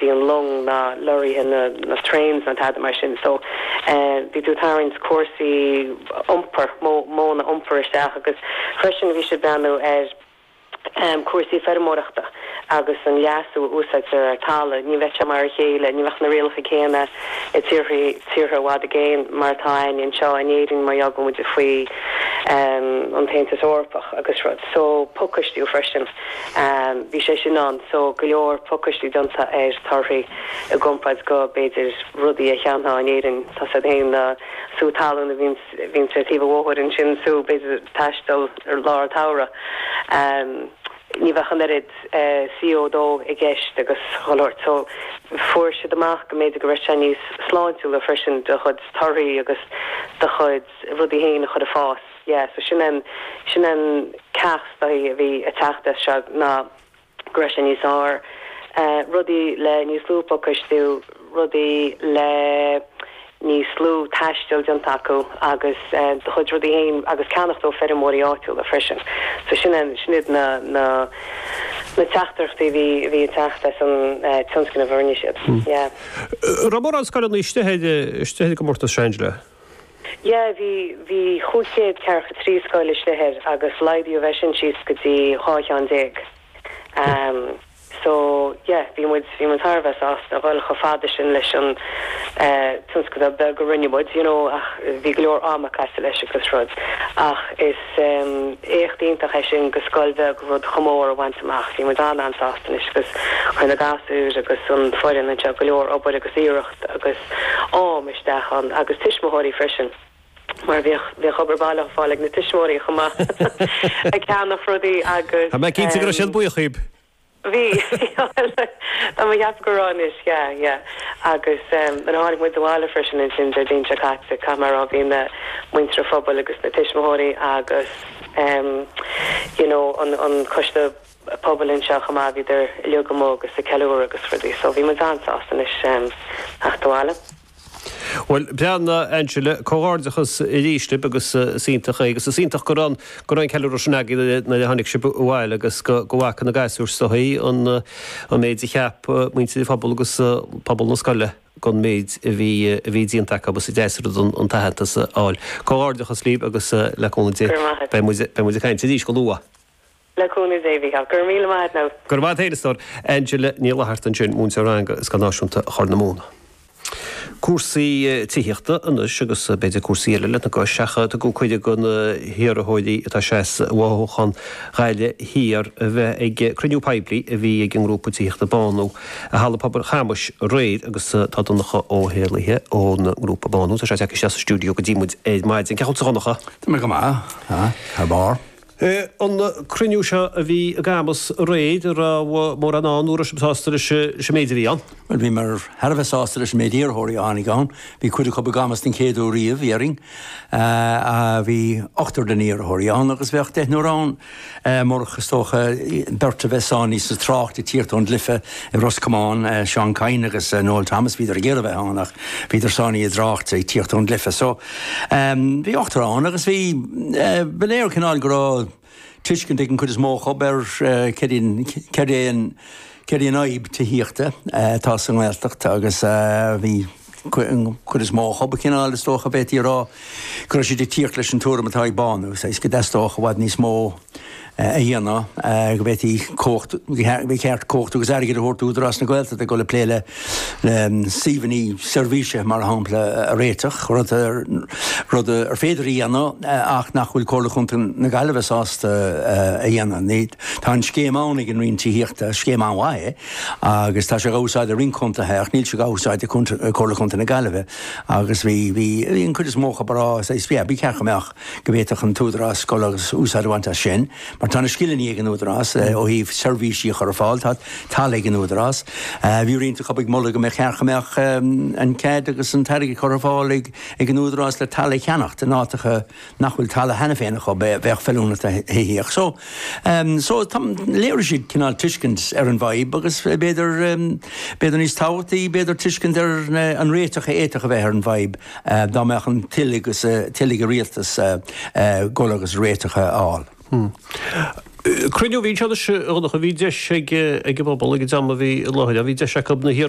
bhí an long, na lorraithe, na trains, na tada mar sin so bhí tú ag tarraingt cúrsaí iompair, modhanna iompair isteach agus freisin bhí siad ag breathnú ar chúrsaí feirmeoireachta agus an leasú a úsáidtear ar talamh, ní bheadh sé mar a chéile, ní bheadh na rialacha céanna i tíortha, tíortha i bhfad i gcéin mar atá againn anseo in Éirinn mar gheall go bhfuil muid faoi an tAontas Eorpach agus rud so pacáistiú freisin. Bhí sé sin ann so go leor pacáistiú déanta ar torthaí i gcomparáid le, b'fhéidir, rudaí a cheannófá in Éirinn. tá a fhios agat fhéin na sú talún a bhíonns bhíonns ar thaobh an bhóthair ansin is tú, b'fhéidir, ag taisteal i lár an tsamhraidh. Ní bheadh an oiread CO 2 i gceist agus an sórt so fuair siad amach go mb'fhéidir go raibh sé níos sláintiúla freisin do chuid torthaí agus do chuid rudaí fhéin a chur ag fás. yeah so sin an sin an teachtaireacht a bhí ag teacht as seo ná go raibh sé níos fearr rudaí le níos lú pacáistiú rudaí le níos lú taistil déanta acu agus do chuid rudaí féin agus ceannacht ó fheirmeoirí áitiúla freisin so sin an sin iad na na na teachtaireachtaí a bhí bhí ag teacht as an tionscnamh a rinne siad yeah. Raibh mórán scoileanna istigh ar istigh ar an gcomórtas seo Angela? Yeah, bhí, bhí cúig chéad ceathracha trí scoil istigh air agus laghdaíodh é sin síos go dtí dhá cheann déag. Em, so, yeah, bhí muid, bhí muid thar a bheith sásta a dhul chomh fada sin leis an, eh, tionscadal beag a rinne muid, you know, ach bhí go leor ama caite leis agus rud. Ach is, em, éacht iontach é sin do scoil bheag rud chomh mór a bhaint amach. Bhí muid an-an-sásta anois agus chuir na gasúir agus an foireann anseo go leor obair agus iarracht. agus am isteach ann, agus tuismitheoirí freisin, mar bhíodh, bhíodh obair baile á fáil ag na tuismitheoirí chomh maith, ag ceannach rudaí. Agus tá mé cinnte go raibh siad buíoch díbh! Bhí, tá mé a cheapadh go raibh anois, yeah, yeah. Agus eh, nuair a tháinig muid abhaile freisin ansin Déardaoin seo caite, caithfidh mé a rá, bhí na, muintir an phobail agus na tuismitheoirí agus eh, you know, an, an coiste, pobail anseo chomh maith, bhíodar uilig amuigh agus ag ceiliúradh agus rudaí, so bhí muid an-sásta anois theacht abhaile. Bhuel, breathnaigh a Angela, comhghairdeachas arís libh agus is iontach é agus is iontach go raibh an ceiliúradh sin agaibh nuair a tháinig sibh abhaile agus go bhfaca na gasúir sa chaoi an méid a cheap muintir an phobail agus pobal na scoile den mhéid a bhí déanta acu agus is deas rud an t-aitheantas a fháil. Comhghairdeachas libh agus le cúnamh Dé, beidh muid ag caint arís go luath. Le cúnamh Dé, Mhícheál. Go raibh míle maith a't, Nell. Go raibh maith a't a stór. Angela Ní Fhlatharta ansin, múinteoir ranga i Scoil Náisiúnta Chorr na Móna. Cúrsaí tithíochta anois agus b'fhéidir cúrsaí eile lena gcois ach tugadh cuireadh do na hiarrthóirí atá ag seasamh i bhfothoghchán Ghaillimh Thiar a bheith ag cruinniú poiblí a bhí ag an ngrúpa tithíochta Bánú i Halla Pobail Chamuis aréir agus tá Donncha Ó hÉallaithe ón ngrúpa Bánú, tá sé tagtha isteach sa stiúideo go dtí muid ar maidin. Cén chaoi a bhfuil tú a Dhonncha? Tá mé go maith, tá, thar barr. An cruinniú seo a bhí i gCamus aréir, an raibh mórán ann, nó an raibh sibh sásta leis an méid a bhí ann? Bhuel, bhíomar thar a bheith sásta leis an méid iarrthóirí a tháinig ann. Bhí cuid acu i gCamus den chéad uair riamh, déarfainn. Bhí ochtar de na hiarrthóirí ann agus bheadh deichniúr ann murach, is dócha, beirt a bheith sáinnithe sa trácht ag tíocht ón gcluiche i Ros Comáin, Seán Kyne agus Noel Thomas. Bhíodar ag iarraidh a bheith ann ach bhíodar sáinnithe i dtrácht ag tíocht ón gcluiche. Bhí ochtar ann agus bhí. Ba léir cineál go raibh tuiscint ag an chuid is mó acu ar céard í an fhadhb tithíochta atá sa nGaeltacht agus bhí an chuid is mó acu cineál, is dócha, go bhféadfaí a rá go raibh siad ag tíocht leis an tuairim atá ag Bánú, go dteastódh i bhfad níos mó. a dhéanamh, go bhféadfaí cumhacht, ba cheart cumhacht agus airgead a thabhairt d'Údarás na Gaeltachta le dul ag plé le suíomhanna seirbhíse, mar shampla, a réiteach, rud ar féidir a dhéanamh ach nach bhfuil Comhairle Chontae na Gaillimhe sásta a dhéanamh. Tá an scéim ann ag an Roinn Tithíochta, scéim an-mhaith é agus tá sé á úsáid ag roinnt contaetha ach níl sé á úsáid ag Comhairle Chontae na Gaillimhe agus bhí an chuid is mó acu ag rá, ba cheart go mbeadh. go bhféadfadh an tÚdarás dul agus úsáid a bhaint as sin, mar tá na scileanna ag an Údarás ó thaobh seirbhísí a chur ar fáil, tá talamh ag an Údarás. Bhí roinnt acu ag moladh go mba cheart go mbeadh an cead agus an t-airgead curtha ar fáil ag an Údarás le talamh a cheannacht in áiteacha nach bhfuil talamh cheana féin acu, a bheadh feiliúnach do thithíocht. So, so, léirigh siad cineál tuiscint ar an bhfadhb agus b'fhéidir, b'fhéidir níos tábhachtaí, b'fhéidir tuiscint ar an réiteach a fhéadfadh a bheith ar an bhfadhb. Dá mbeadh an toil, toil ag an rialtas dul agus réiteach a fháil. Cruinniú a bhí ansin anois a Dhonncha, bhí deis ag an bpobal ag an dream a bhí i láthair, bhí deis acu na hiarrthóirí,